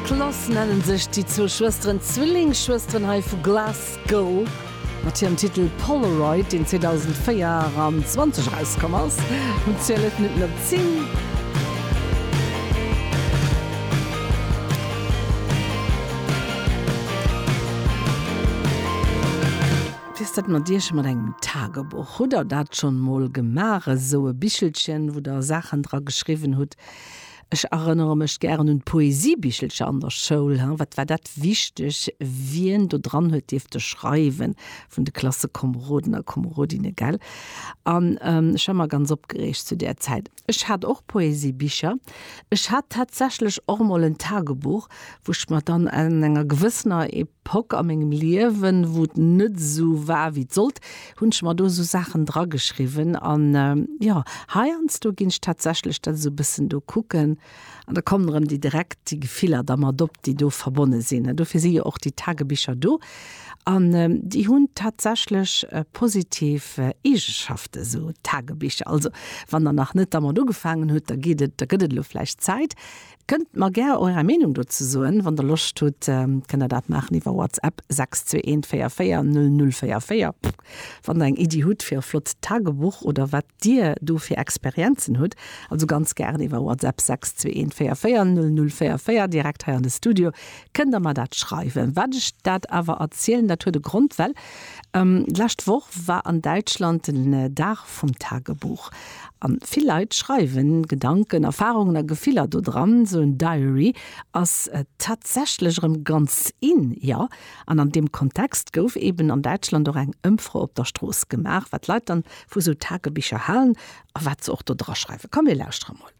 Klass nennen sech déi zwou Schwësteren, d'Zwillingsschwësteren hei vu Glasgow, mat hirem Titel Polaroid, deen 2024 erauskomm ass. Hunn 12 Minutten op 10. Wéi ass dat mat Iech a mat engem Tagebuch? Hutt Der dat schonn emol gemaach, esou e Bichelchen, wou Der Saachen dra geschriwwen hutt, Ech erënnere mech gären un d'Poesiebichelcher an der Schoul. Wat war dat wichteg, wien do dran huet dierfte schreiwen vun de Klassekomeroden a komerodinne, gell? An ech war ëmmer ganz opgereegt zu där Zäit. Ech hat och Poesiebicher. Ech hat tatsächlech och emol en Tagebuch, wou ech mer dann an enger gewëssener Pock a mengem Liewen, wou et net esou war wéi et sollt, hunn ech mer do esou Saachen dra geschriwwen. An jo, heiansdo ginn ech tatsächlech dat esou e bëssen do kucken an da kommen erëm déi direkt déi Gefiller da mat op, déi do verbonne sinn. An dofir si jo och déi Tagebicher do an déi hunn tatsächlech positiv Eegenschaften, esou Tagebicher. Also wann der nach net dermat ugefaangen hutt, da geet et, da gëtt et elo vläicht Zäit. Kënnt mer gär Eure Meenung dozou soen. Wann der Loscht hutt, kënnt der dat maachen iwwer WhatsApp 62144044. Wann der eng Iddi hutt fir e flott Tagebuch oder wat Dir do fir Experienzen hutt, also ganz gären iwwer WhatsApp 62144044 direkt hei an de Studio, kënnt der mer dat schreiwen. Wat ech dat awer erzielen, dat huet e Grond, well d'lescht Woch war an Däitschland den Dag vum Tagebuch. An vill Leit schreiwen Gedanken, Erfahrungen a Gefiller do dran. Sou en Diary ass tatsächlech erëm ganz in, jo. An an deem Kontext gouf eben an Däitschland och eng Ëmfro op der Strooss gemaach, wat d'Leit dann vu sou Tagebicher halen a wat se och do draschreiwen. Komm mir lauschtere mol.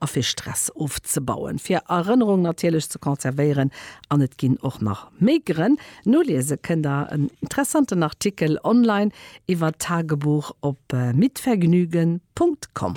a fir Stress ofzebauen, fir Erënnerung natierlech ze konservéieren an et ginn och nach méi Grënn. Noliese kënnt der en interessanten Artikel online iwwer d'Tagebuch op mitvergnügen. Com.